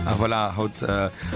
A voilà, haut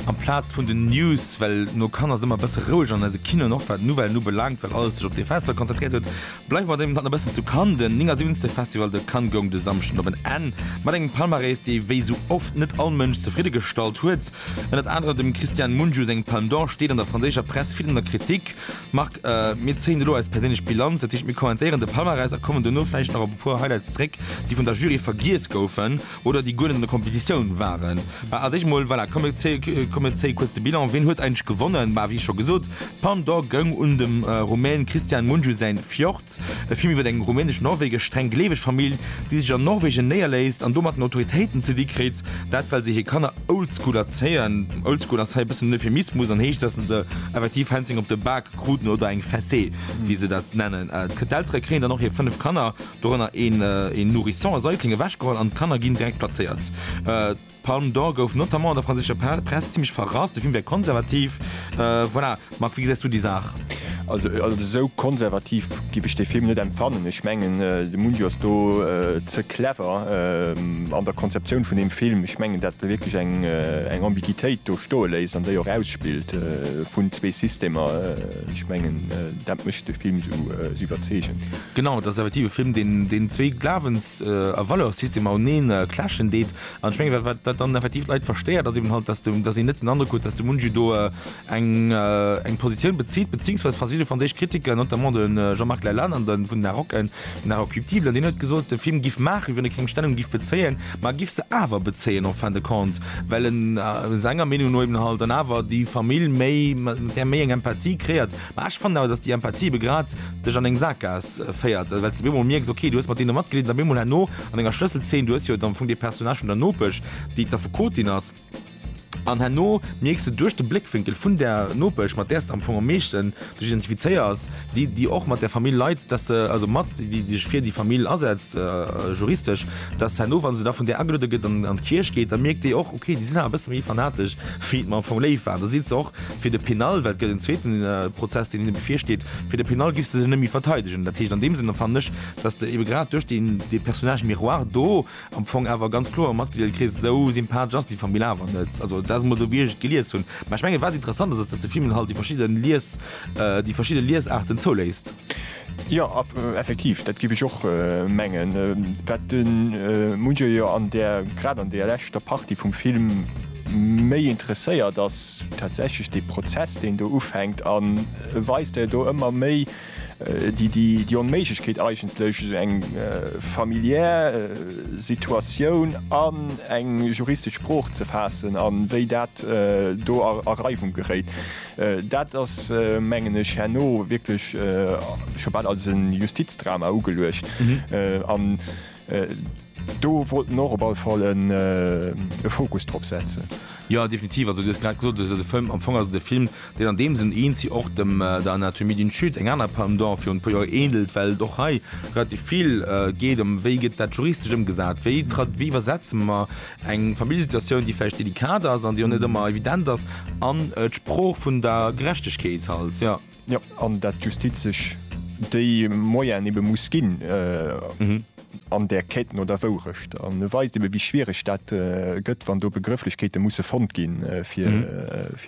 amplaz vun den News, well no Cannes ass et ëmmer e bësse roueg an eise Kinoen, och wat d'Nouvellen ubelaangt, well alles sech op dee Festival konzentréiert huet, bleiwe mer dee Moment nach e bëssen zu Cannes. Den 79. Festival de Cannes goung de Samschden op en Enn mat engem Palmarès, dee wéi sou oft net all Mënsch zefridde gestallt huet. Ënnert anerem dem Cristian Mungiu seng Palme d'Or steet an der franséischer Press vill an der Kritik. Marc, mir zéien elo eis perséinlech Bilanz, dat heescht mir kommentéieren de Palmarès a kommen dono vläicht nach op e puer Highlights zréck, déi vun der Jury vergiess goufen oder déi guer net an der Kompetitioun waren. Mä als éischt mol, voilà, komm mir zéie kuerz de Bilan, wien huet eigentlech gewonnen? Bah, wéi scho gesot, d'Palme d'Or goung un dem Rumän Cristian Mungiu säin Fjord, e Film iwwer eng rumänesch-norwegesch streng gleeweg Famill, déi sech an Norwegen néierléisst an domat den Autoritéiten ze di kritt, dat well se hir Kanner Oldschool erzéien. Oldschool ass hei e bëssen en Euphemismus an heescht, dass se effektiv Hänzéng op de Bak kruten oder eng Fessée, wéi se dat nennen. D'Eltere kréien dann och hir fënnef Kanner, dorënner een Nourrisson a Säugling, ewechgeholl an d'Kanner ginn direkt plazéiert. D'Palme d'Or gouf notamment an der franséischer Press zimmlech verrasst, de Film wär konservativ. Voilà. Marc, wéi gesäis du déi Saach? Also als esou konservativ giff ech dee Film net empfannen. Ech mengen de Mungiu ass do ze clever an der Konzeptioun vun deem Film. Ech mengen dat e wierklech eng eng Ambiguitéit do stoe léisst an déi och ausspillt vun zwee Systemer. Ech mengen dat mécht de Film esou iwwerzeegend. Genau, et ass effektiv e Film deen deen zwee Glawens a Valeurs-Systemer uneen clashen deet. An ech mengen wat wat dann effektiv d'Leit verstéiert ass eben halt, datt de datt een net den Androck huet, datt de Mungiu do eng Positioun bezitt, beziingsweis verschidde franséisch Kritiker, notamment de Jean-Marc Lalanne an de vun Narok, en Inarocuptible, deen huet gesot, de Film giff maachen, wéi wann e keng Stellung giff bezéien, ma e giff se awer bezéien en fin de compte, well en senger Meenung no eben halt dann awer déi Famill méi, mat där méi eng Empathie kreiert. Ma ech fannen awer, datt déi Empathie ebe grad dech an eng Sakgaass féiert, well s de op eemol mierks, ok, du hues mat deene matgeleet, an op eemol herno an enger Schlësselzeen, du hues jo et am Fong dee Personnage vun der Nopesch, déi d'Affekotin ass, An herno mierks de duerch de Bléckwénkel vun der Nopesch, mat där s de am Fong am meeschten dech identifizéiers, déi, déi och mat där Famill leit, dass se, also mat déi, déi sech fir déi Famill asetzt, juristesch, dass herno, wa se da vun där ageluede gëtt an an d'Kierch geet, da mierkt déi och, okay, déi sinn awer e bësse méi fanatesch, wéi et mer am Fong léif war. An da seet se och fir de Pénal, well et gëtt en zweeten Prozess, deen hinne bevirsteet, fir de Pénal giff s de se net méi verteidegen. Dat heescht an deem Sënn, fan ech, dass de ebe grad duerch dee Personnage miroir do, Am Fong awer ganz kloer am Matgliederkrees, esou sympathesch ass déi Famill awer net. Also dat ass emol esou, wéi ech et gelies hunn. Mä ech mengen, wat interessant ass, ass, datt de Film halt déi verschidde Lies, déi verschidde Liesaarten zouléisst. Jo, effektiv, dat géif ech och mengen. Wat de Mujay jo an där, grad an där leschter Partie vum Film méi interesséiert, ass tatsächlech dee Prozess, deen do ufänkt, a weist, där do ëmmer méi déi Onméiglechkeet eigentlech esou eng familiär Situatioun an eng juristesch Sprooch ze faassen a wéi dat do a Reiwung geréit, dat ass, mengen ech, herno wierklech scho bal als e Justizdrama ugeluecht. Do wollt en och op all Fall e Fokus drop setzen. Jo, definitiv. Also, du hues grad gesot, et ass e Film, am Fong ass et e Film, deen an deem Sënn eenzi och dem der Anatomie d'une Chute, eng aner Palme d'Or virun e puer Joer, änelt, well et och hei relativ vill geet ëm, wéi gëtt dat juristesch ëmgesat, wéi wéi iwwersetze mer eng Familljesituatioun, déi vläicht delikat ass an déi och net ëmmer evident ass, an d'Sprooch vun der Gerechtegkeet halt, jo. Jo, an dat d'Justiz sech déi Moyen ebe muss ginn an där Quête no der Wourecht. An e weist ebe wéi schwiereg dat gëtt, wann do Begrëfflechkeete musse fonnt gi fir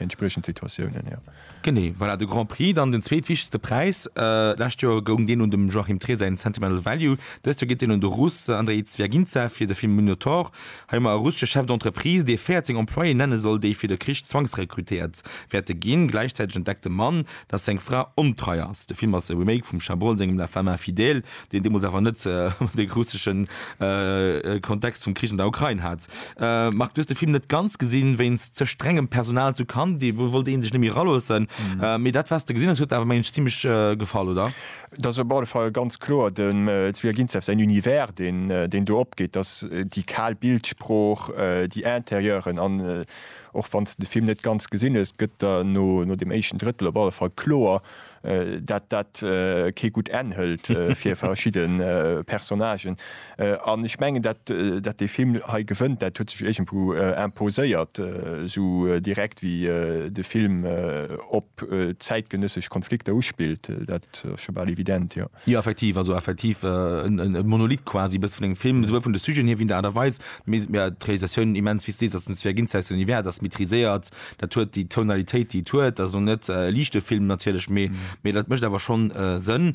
entspriechend Situatiounen. Genee, voilà, de Grand Prix, dann den zweetwichtegste Präis. Lescht Joer goung deen un dem Joachim Trier säin Sentimental Value, dëst Joer geet deen un de Russ Andrei Zvjagincev fir de Film Minotaur. Hei mar e russesche Chef d'entreprise, dee 14 Employéen nenne soll, déi fir de Krich zwangsrekrutéiert wäerte ginn. Gläichzäiteg entdeckt de Mann, dass seng Fra ontrei ass. De Film ass e Remake vum Chabrol sengem La femme infidèle, deen deemools awer net de russesche Kontext vum Krich an der Ukrain hat. Marc, du hues de Film net ganz gesinn, wéinst ze strengem Personal zu Cannes, do wollt ee sech net méi eraloossen, mee dat wat s de gesinn hues, huet awer, mengen ech, zimlech gefall, oder? Et ass op alle Fall ganz kloer dem Zwiaginzew säin Univers, deen, deen do opgeet, dass déi kal Bildsprooch, déi Intérieuren an, och wann s de de Film net ganz gesinn hues, gëtt der no, no deem éischten Drëttel op alle Fall kloer, dat dat kee gutt Enn hëlt fir verschidde Personnagen. An ech mengen, dat, dat dee Film hei gewënnt, dat huet sech iergendwou imposéiert, esou direkt wéi de Film op zäitgenëssesch Konflikter uspillt. Dat ass scho bal evident, jo. Jo, effektiv, also effektiv e Monolith quasi e bësse vun engem Film, souwuel vun de Sujeten hier wéi der Aart a Weis. D'Realisatioun immens, wéi s de sees, ass dem Sven Ginzek säin Univers, dat ass maîtriséiert, dat huet déi Tonalitéit, déi et huet. Dat ass elo net e liichte Film natierlech, mee dat mécht awer schonn Sënn.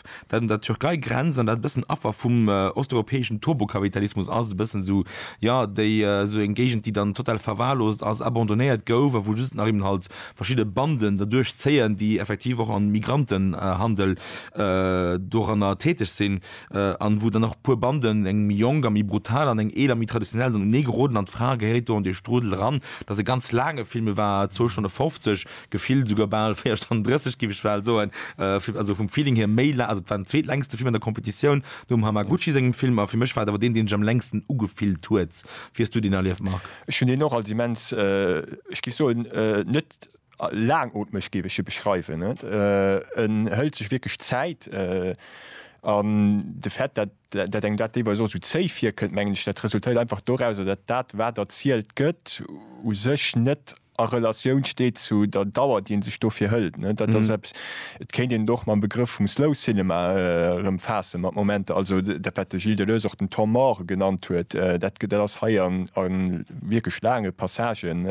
dat un der Türkei grenzt an dat e bëssen Affer vum osteuropäeschen Turbokapitalismus ass, e bëssen esou, jo, déi, esou eng Géigend, déi dann total verwahrlost ass, abandonnéiert gouf a wou just nach eben halt verschidde Banden derduerch zéien, déi effektiv och am Migrantenhandel doranner täteg sinn an wou dann och e puer Banden, eng méi jonk a méi brutal an eng eeler, méi traditionell, dann uneegeroden an d'Fra gehéiert do an dee Strudel eran. Dat ass e ganz laange Film, e war zwou Stonne fofzeg, Gefillt esouguer bal 4 Stonnen 30, géif ech bal soen. Also vum Feeling hier méi laang, also et war den zweetlängste Film an der Competitioun nom Hamaguchi sengem Film a fir mech war et awer deen, deen sech am längsten ugefillt huet. Wéi hues du deen erlieft, Marc? Ech hunn deen och als immens, ech géif soen, net laangootmeg géif ech e beschreiwen. En hëlt sech wierklech Zäit an de Fait, datt engem dat deelweis och esou zéi virkënnt, mengen ech, dat resultéiert einfach dorauser, datt dat, wat erzielt gëtt, u sech net a Relatioun steet zu der Dauer, déi ee sech dofir hëlt. Dat ass eppes, et kéint een et och mam Begrëff vum Slow Cinema erëmfaassen, mat Momenter, also dat, wat de Gilles Deleuze och den Temps mort genannt huet, dat dat ass hei a wierklech laange Passagen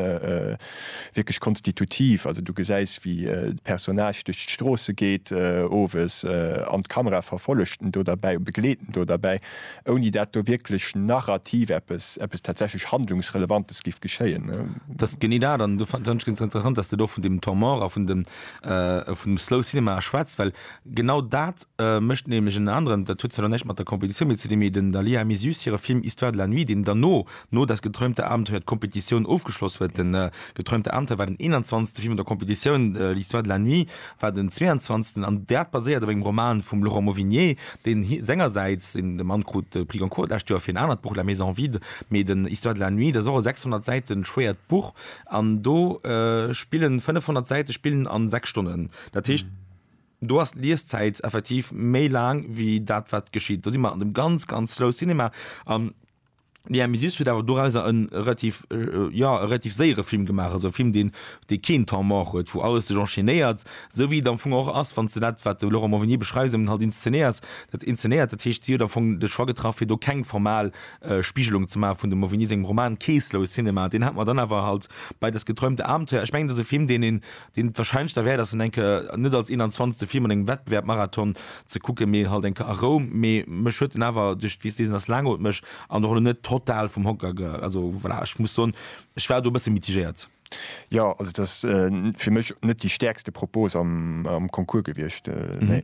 wierklech konstitutiv. Also du gesäis, wéi de Personnage duerch d'Stroosse geet owes an d'Kamera verfollegt en do derbäi, begleet en do derbäi. ouni dat do wierklech narrativ eppes, eppes tatsächlech Handlungsrelevantes giff geschéien. Dat ass genee dat, an do fannen ech ganz interessant, dass de do vun deem Temps mort a vun dem, vun dem slow cinema schwätz, well genau dat mécht nämlech en aneren, dat huet zwar elo näischt mat der Compétition méi ze dinn, mee den Dalia Misius hire Film Histoire de la nuit, deen derno No Das geträumte Abenteuer d'Kompetitioun ofgeschloss huet. Den geträumte Abenteuer war den 21. Film an der Kompetitioun. L'Histoire de la nuit war den 22. an dat baséiert op engem Roman vum Laurent Mauvignier, deen sengersäits en de Mann krut, de Prix Goncourt d'lescht Joer fir en anert Buch La maison vide, mee den Histoire de la nuit, dat ass och e 600 Säite schwéiert Buch an do spillen 500 Säite spillen an 6 Stonnen. Dat heescht, do ass d'Lieszäit effektiv méi laang wéi dat wat geschitt. Do si mer an dem ganz, ganz slow Cinema. Déi Amy Süß huet awer dorauser en relativ, jo, e relativ séiere Film gemaach, also e Film, deen, dee keen Temps mort huet, wou alles sech enchaînéiert, esou wéi et am Fong och ass, wann s de dat, wat de Laurent Morvignier beschreiws, eben halt inszenéiers, dat inzenéiert. Dat heescht, si huet am Fong de Choix getraff, fir do keng formal Spigelung ze maachen vun dem Morvignier sengem Roman. Kee Slow Cinema, deen hat mer dann awer halt bei Das geträumte Abenteuer, ech mengen, et ass e Film, deen een deen et wahrscheinlech derwäert ass, en eng Kéier net als 21. Film an engem Wettbewerb-Marathon ze kucken, mee halt eng Kéier a Roum. Mee mech huet en awer duerch, wéi s de sees, en ass laangootmeg an och elo net total vum Hocker ge. Also voilà, ech muss soen, ech war do e bësse mitigéiert. Jo, also et ass fir mech net déi stäerkste Propose am Concours gewiescht, nee.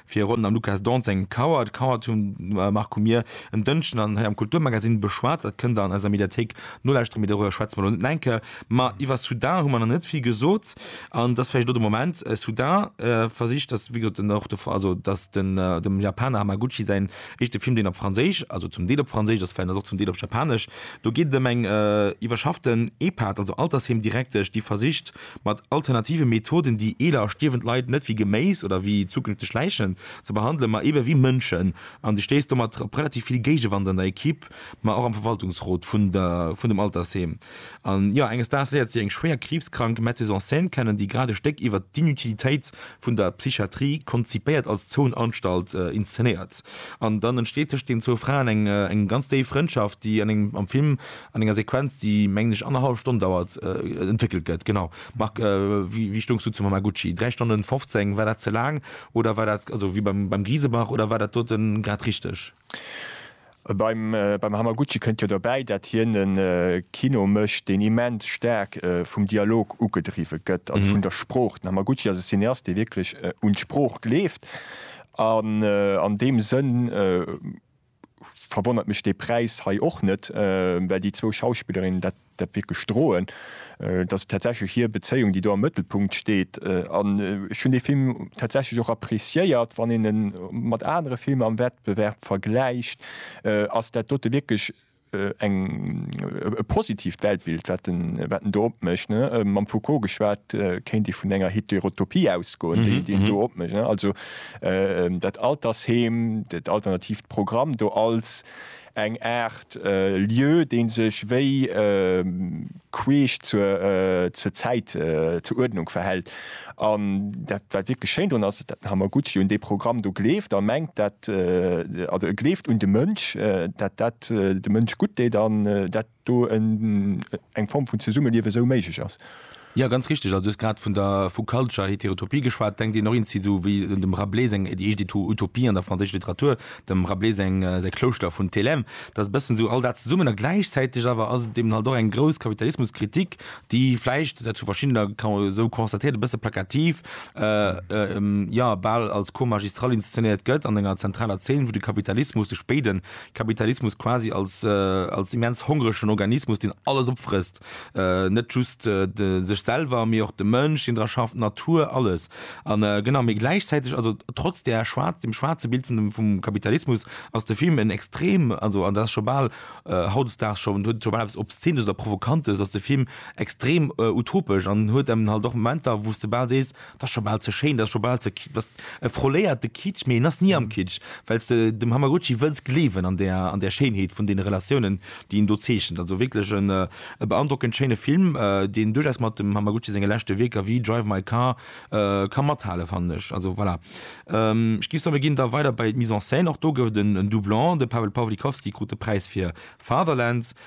Fir ronn am Lukas Dont seng Kauer. D'Kauer vum Marc hu mir en Dënschden an hei am Kulturmagazin beschwat. Dat kënnt der an eiser Mediathéik nolauschtere, mee doriwwer schwätze mer elo net enke. Ma iwwer Soudain hu mer nach net vill gesot an et ass vläicht elo de Moment. Soudain versicht, dass, wéi gesot, en och de, also dass den, dem Japaner Hamaguchi säin éischte Film, deen op Franséisch, also zum Deel op Franséisch ass, vläicht ass och zum Deel op Japanesch, do geet et ëm eng iwwerschafften Epat, also Altersheem Direktesch, déi versicht, mat alternative Methoden déi eeler a stierwend Leit net wéi Geméis oder wéi zukünfteg Läichen ze behandelen, ma eebe wéi Mënschen. An du stéiss domat op relativ vill Géigewand an der Equipe, ma och am Verwaltungsrot vun der, vun dem Altersheem. An jo, enges Daags léiert si eng schwéier kriibskrank Metteuse en scène kennen, déi grad e Stéck iwwert d'Inutilitéit vun der Psychiatrie, konzipéiert als Zoonanstalt, inszenéiert. An dann entsteet tëschent deenen zwou Fraen eng, eng ganz déif Frëndschaft, déi an engem, am Film, An enger Sequenz, déi mengen ech annerhallef Stonn dauert, entwéckelt gëtt. Genau. Marc, wéi stoungs du zum Hamaguchi? Dräi Stonnen 15, war dat ze laang oder war dat, also wéi beim Griesebach, oder war dat doten grad richteg? Beim Hamaguchi kënnt jo derbäi, dat hien e Kino mécht, deen immens staark vum Dialog ugedriwwe gëtt, also vun der Sprooch. Den Hamaguchi ass e Cineast, dee wierklech un d'Sprooch gleeft. An deem Sënn verwonnert mech dee Präis hei och net, well déi zwou Schauspillerinnen dat wierklech droen. Et ass tatsächlech hir Bezéiung, déi do am Mëttelpunkt steet. An ech hunn dee Film tatsächlech och appreciéiert. Wann een e mat anere Filmer am Wettbewerb vergläicht, ass dat dote wierklech Eng, e positiivt Weltbild, wat en do opmécht, ne? Mam Foucault geschwat, kéint ee vun enger Heterotopie ausgoen, déi en do opmécht, ne? Also dat Altersheem, dat alternativt Programm do als eng Aart Lieu, dee sech wéi. queesch zur zur Zäit, zur Uerdnung verhält. An dat wat wierklech schéin drun ass, den Hamaguchi un dee Programm do gleeft a mengt dat, also e gleeft un de Mënsch, dat dat dem Mënsch gutt deet an dat do en eng Form vun Zesummeliewen esou méiglech ass. Jo, ganz richteg. Also du hues grad vun der vu Culture Heterotopie geschwat. Denkt een och eens si esou wéi dem Rabelais seng déi éischt Utopie an der franséischer Literatur, dem Rabelais seng, säi Klouschter vun Thelem, dat ass e bëssen esou all dat zesummen a gläichzäiteg awer ass et eben halt och eng grouss Kapitalismuskritik, déi vläicht, dat hu verschiddener ka esou constatéiert, e bësse plakativ, jo, bal als Cours magistral inszenéiert gëtt an enger zentraler Zeen, wou de Kapitalismus, de spéide Kapitalismus quasi als, als immens hongregen Organismus, deen alles opfrësst, Net just sech selwer, mee och de Mënsch, deen dra schafft, d'Natur, alles. A genau, mee gläichzäiteg, also trotz där schwaarz, dem schwaarze Bild vun dem, vum Kapitalismus, ass de Film en extrem, also an dat ass scho bal hautdesdaags scho, huet scho bal eppes Obszeenes oder Provokantes, ass de Film extrem utopesch an huet eben halt och Momenter, wou s de bal sees, Dat ass scho bal ze schéin, dat ass scho bal ze ki-, dat ass e froléierte Kitsch, mee en ass ni am Kitsch, well s de dem Hamaguchi wëlls gleewen an där, an där Schéinheet vun deene Relatiounen, déi en do zeechent. Also wierklech en, e beandrockend schéine Film, deen duerchaus mat dem Hamaguchi senge leschte Wierker wéi Drive My Car ka mathale fannen ech. Also voilà. Ech géif soe mir ginn da weider bei d'Mise en scène. Och do gouf et en Doublon, de Paweł Pawlikowski krut de Präis fir Fatherland.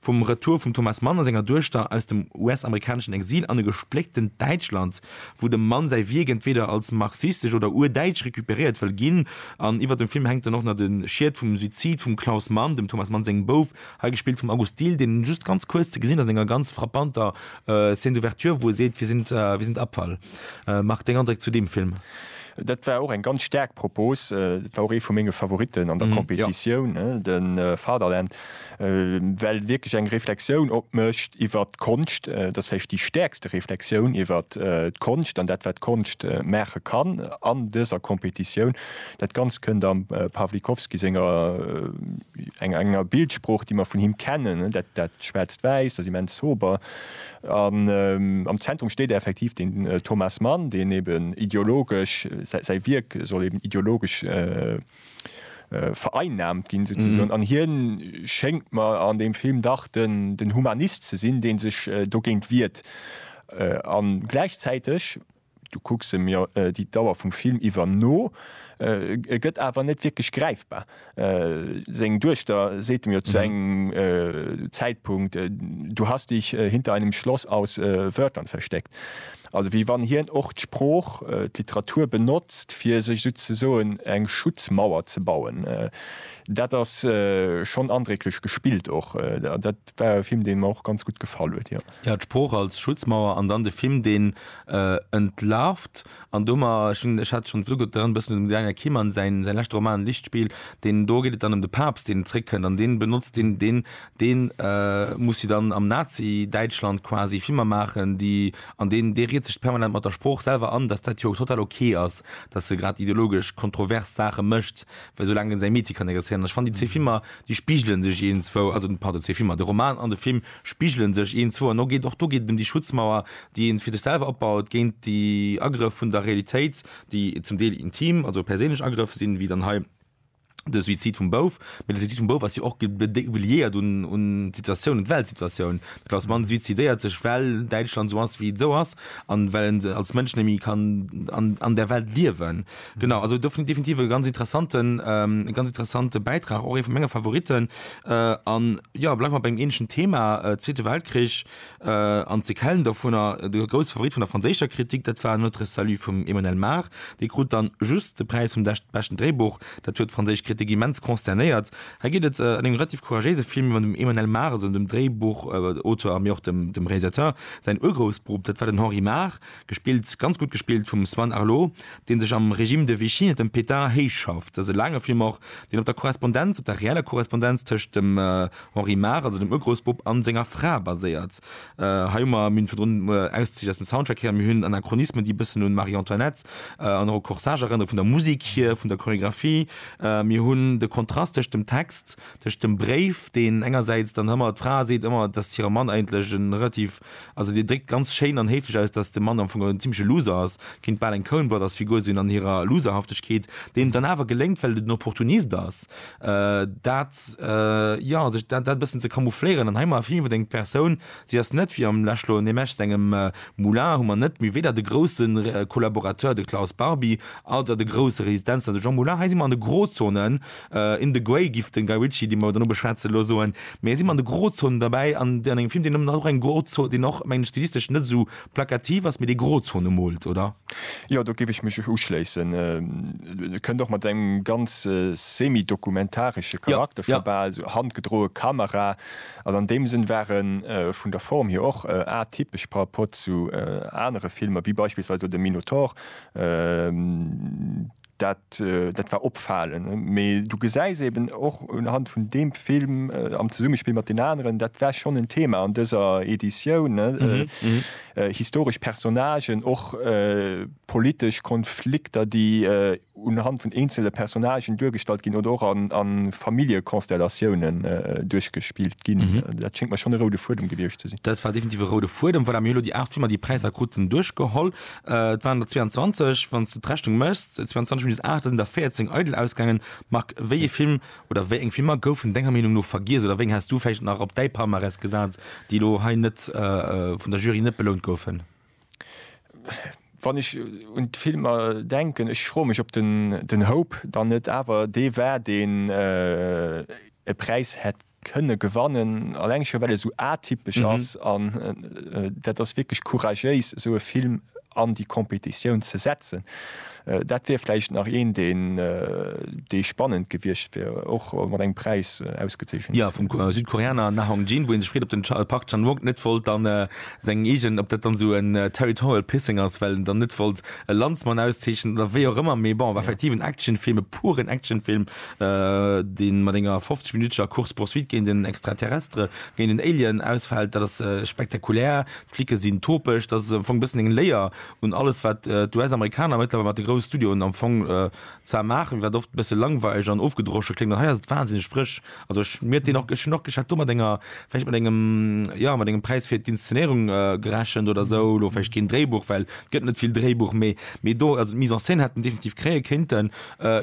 Vum Retour vum Thomas Mann a senger Duechter aus dem US-amerikaneschen Exil an e gesplécktent Däitschland, wou de Mann säi Wierk entweeder als marxistesch oder urdäitsch recuperéiert wëll ginn, an iwwer dem Film hänkt dann och nach de Schied vum Suizid vum Klaus Mann, dem Thomas Mann sengem Bouf, hei gespillt vum August Dill, deen just ganz kuerz ze gesinn ass an enger ganz frappanter Scène d'ouverture, wou e seet, Wir sind, wir sind Abfall. Marc, deng Andréck zu deem Film? Dat war och eng ganz staark Propos. Dat war och ee vu menge Favoritten an der Competitioun, den Fatherland. well wierklech eng Reflexioun opmécht iwwert d'Konscht, dat ass vläicht déi stäerkste Reflexioun iwwert d'Konscht an dat wat d'Konscht maache kann an dëser Competitioun. Dat Ganzt kënnt am Pawlikowski senger, enger Bildsprooch déi mer vun him kennen, dat Schwaarzt-Wäiss, dat immens Sober. An am Zentrum steet effektiv den Thomas Mann, deen eeben ideologesch, säi Wierk soll eeben ideologesch vereinnahmt ginn souzesoen an hien schéngt mer an deem Film dach den den Humanist ze sinn deen sech dogéint wiert an gläichzäiteg, du kucks em jo déi Dauer vum Film iwwer no, e gëtt awer net wierklech gräifbar. Seng Duechter seet em jo zu engem Zäitpunkt, Du hast dich hinter einem Schloss aus Wörtern versteckt. Also wéi wann hien och d'Sprooch, d'Literatur benotzt, fir sech esou ze soen eng Schutzmauer ze bauen. Dat ass schonn andrécklech gespillt och. Dat war e Film, dee mer och ganz gutt gefall huet, jo. Jo, d'Sprooch als Schutzmauer an dann de Film, deen entlarvt. An do mer, ech hat schonn esou gutt dran, e bëssen un dem Daniel Keman säin leschte Roman Lichtspiel, deen, do geet et dann ëm de Papst, deen zeréckkënnt an dee benotzt deen, deen Deen muss si dann am Nazi-Däitschland quasi Filmer maachen, déi, an deen, dee riet sech permanent mat der Sprooch selwer an, dass dat jo total ok ass, dass e grad ideologesch kontrovers Saache mécht, well soulaang en säi Meetier kann interesséieren. An ech fannen, déi zwee Filmer, déi spigele sech eenzwou, also, pardon, zwee Filmer, de Roman an de Film spigele sech eenzwou an. Och do geet et ëm déi Schutzmauer, déi ee fir sech selwer opbaut géint déi Agrëff vun der Realitéit, déi zum Deel intim, also perséinlech Agrëff sinn, wéi dann hei de Suizid vum Bouf, mee de Suizid vum Bouf ass jo och liéiert un d'Situatioun, un d'Weltsituatioun. De Klaus Mann suizidéiert sech, well Däitschland esou ass, wéi et esou ass, a well en als Mënsch net méi kann an där Welt liewen. Genau, also do fir mech definitiv e ganz interessanten, e ganz interessante Bäitrag, och ee vu menge Favoritten. An jo, bleiwe mer bei engem änlechen Thema, Zweete Weltkrich, An ze kellen dovunner, de grousse Favorit vun der franséischer Kritik, dat war Notre Salut vum Emmanuel Mar. Dee krut dann just de Präis vum beschten Dréibuch. Dat huet d'franséisch Kritik immens consternéiert. Hei geet et an engem relativ couragéise Film ëm dem Emmanuel Mar, also ëm dem Dréibuchauteur, mee och dem Realisateur, säin Urgroussbrupp, dat war den Henri Mar, Gespillt, ganz gutt gespillt vum Sven Arlo, deen sech am Régime de Vichy net den Pétard héich schafft. Ass e laange Film och, deen op der Korrespondenz, op der reeller Korrespondenz tëscht dem Henri Maar, also dem Urgroussbub, an senger Fra baséiert. Hei hu mer, mir hunn virdrun Auszich aus dem Soundtrack héieren, mir hunn en Anachronisme, déi e bëssen un Marie Antoinette an och u Corsage erënneren, vun der Musik hier, vun der Choreographie. Mir hunn de Kontrast tëscht dem Text, tëscht dem Bréif, deen engersäits dann ëmmer, d'Fra seet ëmmer, dass hire Mann eigentlech e relativ Also dir dréckt ganz schéin an héiflech aus, datt de Mann am Fong en zimmleche Loser ass, kéint bal eng Coen-Brothers-Figur sinn an hirer Loserhaftegkeet, deem et dann awer geléngt, well et en Opportunist ass, dat, jo, sech dat e bëssen ze camoufléieren. An hei hu mer effektiv iwwer eng Persoun, si ass net wéi am Läschlo an deem Eschs engem Moulin, hu mer net méi weder de grousse Collaborateur, de Klaus Barbie, oder de grousse Resistenzler, de Jean Moulin. Hei si mer an de Grozonen. In the Grey giff den Guy Ritchie, deen mer dann no beschwätzen, elo soen, mee hien si mat de Grozonen derbäi an an engem Film, deen ëmmer nach eng Grozon, deen och mengen ech stilistesch net esou plakativ ass, mee dee Grozonen moolt, oder? Jo, do giff ech mech uschléissen. E kënnt och mat engem ganz semi-dokumentaresche Charakter, scho bal esou handgedroe Kamera, an an deem Sënn war e vun der Form hier och atypesch par rapport zu anere Filmer, wéi beispillsweis elo de Minotaur. Dat, dat war opfalend. Mee du gesäis eben och unhand vun deem Film, am Zesummespill mat den aneren, dat war schonn en Thema an dëser Editioun, historesch Personnagen, och politesch Konflikter, déi unhand vun eenzele Personnagen duergestallt ginn oder och a Familljekonstellatiounen duerchgespillt ginn. Dat schéngt mer schonn e roude Fuedem gewiescht ze sinn. Dat war definitiv e roude Fuedem. Voilà, mir hu lo déi aacht Filmer, déi Präisser kruten, duerchgeholl. Et waren der 22, wann s de d'Rechnung méchs, 22 minus 8, da sinn der 14 eidel ausgaangen. Marc, wéi ee Film oder wéi eng Filmer goufen denger Meenung no vergiess oder wéi eng häss du vläicht nach op däi Palmarès gesat, déi elo hei net vun der Jury net belount goufen? Wann ech un d'Filmer denken, ech froe mech, ob den Hope dann net awer dee war, deen e Präis hätt kënne gewannen, alleng scho well e sou atypesch ass an dat ass wierklech couragéis esou e Film an déi Competitioun ze setzen. Dat wier vläicht nach een deen dee spannend gewiescht wier och mat engem Präis ausgezeechent. Jo, vum Südkoreaner Na Hong Jin, wou ee sech freet op den Park Chan Wook net wollt dann seng eegen, ob dat dann esou en territorial pissing ass, well en dann net wollt e Landsmann auszeechnen oder wéi och ëmmer, mee bon, war effektiv en Actionfilm, e puren Actionfilm dee mat enger 50 minuttescher Course poursuite géint en Extraterrestre, géint en Alien ausfält, dat ass spektakulär, d'Flicke sinn topeg, dat ass am Fong e bëssen eng Léier un alles wat d'US-Amerikaner mëttlerweil mat de grousse Studioen am Fong zwar maachen, mee wat oft e bësse langweileg an ofgedroschen kléngt, an hei ass et wahnsinneg frësch. Also ech mir deen och, ech hunn och gech hat do mat enger, vläicht mat engem, jo mat engem Präis fir d'Inszenéierung gerechent oder esou, elo vläicht keen Dréibuch, well et gëtt net vill Dréibuch, mee mee do, also d'Mise en scène hätt en definitiv kréie kéinten.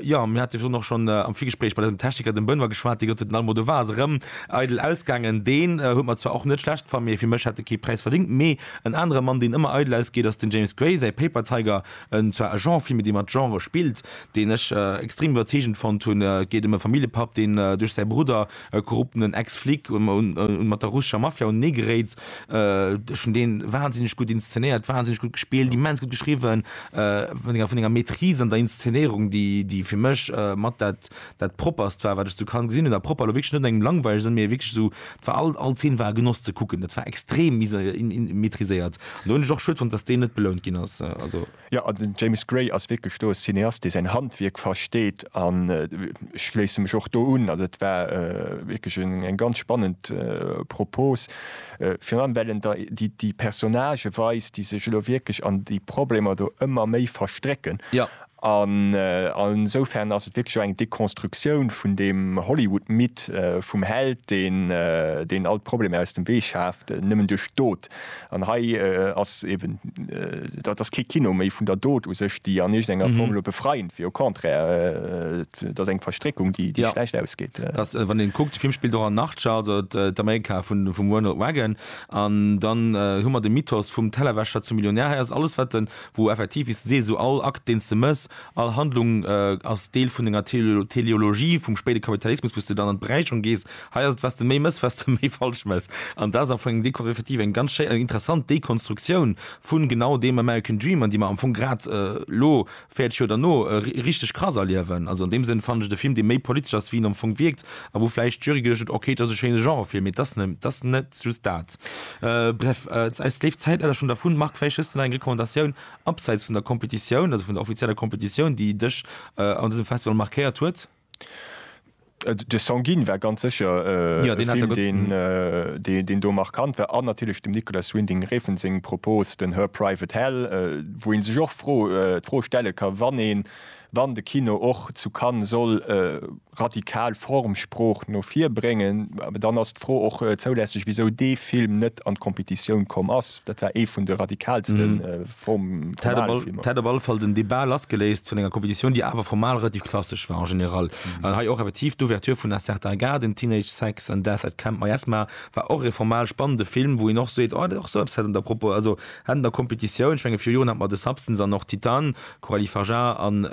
Jo, mir hate virun och schonn am Virgespréich mat eisem Techniker, dem Benoit, geschwat, dee gesot huet, den Almodo war, ass erëm eidel ausgaangen. Deen huet mer zwar och net schlecht gefa, mee fir mech hätt e kee Präis verdéngt. Mee en anere Mann, deen ëmmer eidel ausgeet, ass den James Gray. Säi Paper Tiger, en zwar e Genre-Film, mee dee mat Genre spillt, deen ech extrem iwwerzeegend fonnt hunn. Et geet ëm e Familljepapp, deen duerch säi Brudder e korruptenen Ex-Flic un mat der russescher Mafia un ee geréit. Ech hunn deen wahnsinneg gutt inszenéiert, wahnsinneg gutt gespillt, immens gutt geschriwwen, mat enger vun enger Maîtrise an der Inszenéierung, déi déi fir mech mat dat dat propperst war, wat ech zu Cannes gesinn hunn. A propper elo wierklech net an engem langweileg Sënn, mee wierklech esou, et war all all Zeen war e Genoss ze kucken, dat war extrem mise in in maîtriséiert. An do hunn ech och schued fonnt, datt deen net belount ginn ass. Also. Jo, an den James Gray ass wierklech do e Cineast, dee säin Handwierk versteet, an ech schléisse mech och do un. Also et war wierklech eng ganz spannend Propos, virun allem well en der déi Personnagë weist, déi sech elo wierklech an déi Problemer do ëmmer méi verstrécken. An esoufern ass et wierklech och eng Deconstructioun vun deem Hollywood-Mythe vum Held, deen all d'Problemer aus dem Wee schaaft, nëmmen duerch Dot. An hei ass eben, dat ass kee Kino méi vun der Dot u sech, déi an iergendenger Form elo befreiend wier. Au contraire, et ass eng Verstréckung, déi schlecht ausgeet. Wann ee kuckt, de Film spillt och an Narcha, also d'Amerika vum Ronald Reagan. An dann hu mer de Mythos vum Tellerwäscher zum Millionär. Hei ass et alles, wat de, wou effektiv, wéi s de sees, esou all Akt, deen s de méchs, all Handlung ass Deel vun enger Teleologie vum spéide Kapitalismus, wou s de dann an d'Beräicherung gees Hei ass et, was de méi mëss, was de méi falsch mëss. An dat ass am Fong eng Découverte effektiv, eng ganz schéi an interessant Dekonstruktioun vu genau deem American Dream, an déi mer am Fong grad elo, 40 Joer derno, richteg krass erliewen. Also an deem Sënn fannen ech et e Film, dee méi politesch ass, wéi en am Fong wierkt, a wou vläicht d'Jury geduecht huet, ok, et ass e schéine Genrefilm, mee et ass net just dat. Bref, eis léift Zäit leider schonn dervun. Marc, vläicht hues de nach eng Recommandatioun abseits vun der Competitioun, also vun der offizieller Competitioun, déi dech an dësem Festival markéiert huet? De Sanguine war ganz sécher e Film, deen do markant war. An natierlech dem Nicolas Winding Refn seng Propose, den Her Private Hell, wou ee sech och d'Fro stelle ka wann de Kino och zu Cannes soll radikal Formsprooch no vir bréngen, dann ass d'Fro och zoulässeg, wisou dee Film net an d'Competitioun komm ass. Dat war ee vun de radikalste. D'That op alle Fall den Debat lassgeléist vun enger Competitioun, déi awer formal relativ klassesch war en général. An hei och effektiv d'Ouverture vun A Certain Garden, Teenage Sex, and Death at Camp Miasma war och e formal spannende Film, wou een och seet, oh, och sou eppes hätt an der Propo, also hätt an der Competitioun, ech menge, viru Joren hat mer The Substance an och Titane, Coralie Fajar an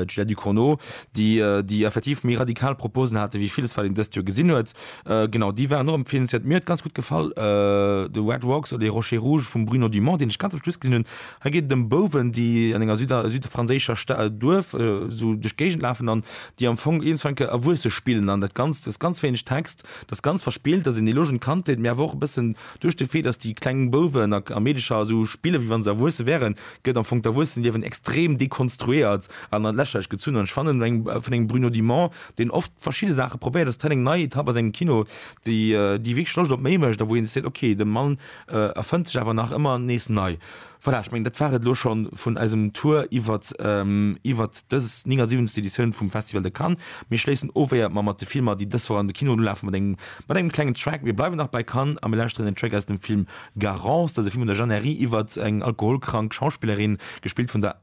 Juliette Ducournau, déi effektiv méi radikal Proposen haten, wéi villes, wat een dëst Joer gesinn huet. Genau, déi waren och empfeelenswert. Mir huet ganz gutt gefall The Red Rocks oder Les Rochers Rouges vum Bruno Dumont, deen ech ganz am Schluss gesinn hunn. Hei geet et ëm Bouwen, déi an enger süder südfranséischer Sta Duerf esou duerch d'Géigend lafen an déi am Fong iergendwann ke Erwuesse spillen. An dat Ganzt, et ass ganz wéineg Text, et ass ganz verspillt, et ass een Eloge un d'Kandheet, mee awer och e bëssen duerch de Fait, datt déi kleng Bouwen a a Meedercher esou spillen, wéi wa se Erwuesse wäeren, gëtt am Fong d'Erwuessenliewen extrem dekonstruéiert an an d'Lächerlech gezunn. An ech fannen, eng vun engem Bruno Dumont, deen oft verschidde Saache probéiert, dass d'Training nei Etapp ass, engem Kino, déi déi wierklech Loscht op méi mécht a wou een seet, ok, de Mann erfënnt sech awer nach ëmmer nees nei. Voilà, ech mengen, dat war et elo scho vun eisem Tour iwwert iwwert dës 79. Editioun vum Festival de Cannes. Mir schléissen of, éiert mer mat de Filmer, déi dës Woch an de Kinoen ulafen, mat engem mat engem klengen Track. Mir bleiwen nach bei Cannes a mir lauschteren en Track aus dem Film Garance. Dat ass e Film vun der Jeanne Herry iwwert eng alkoholkrank Schauspillerin, gespillt vun der.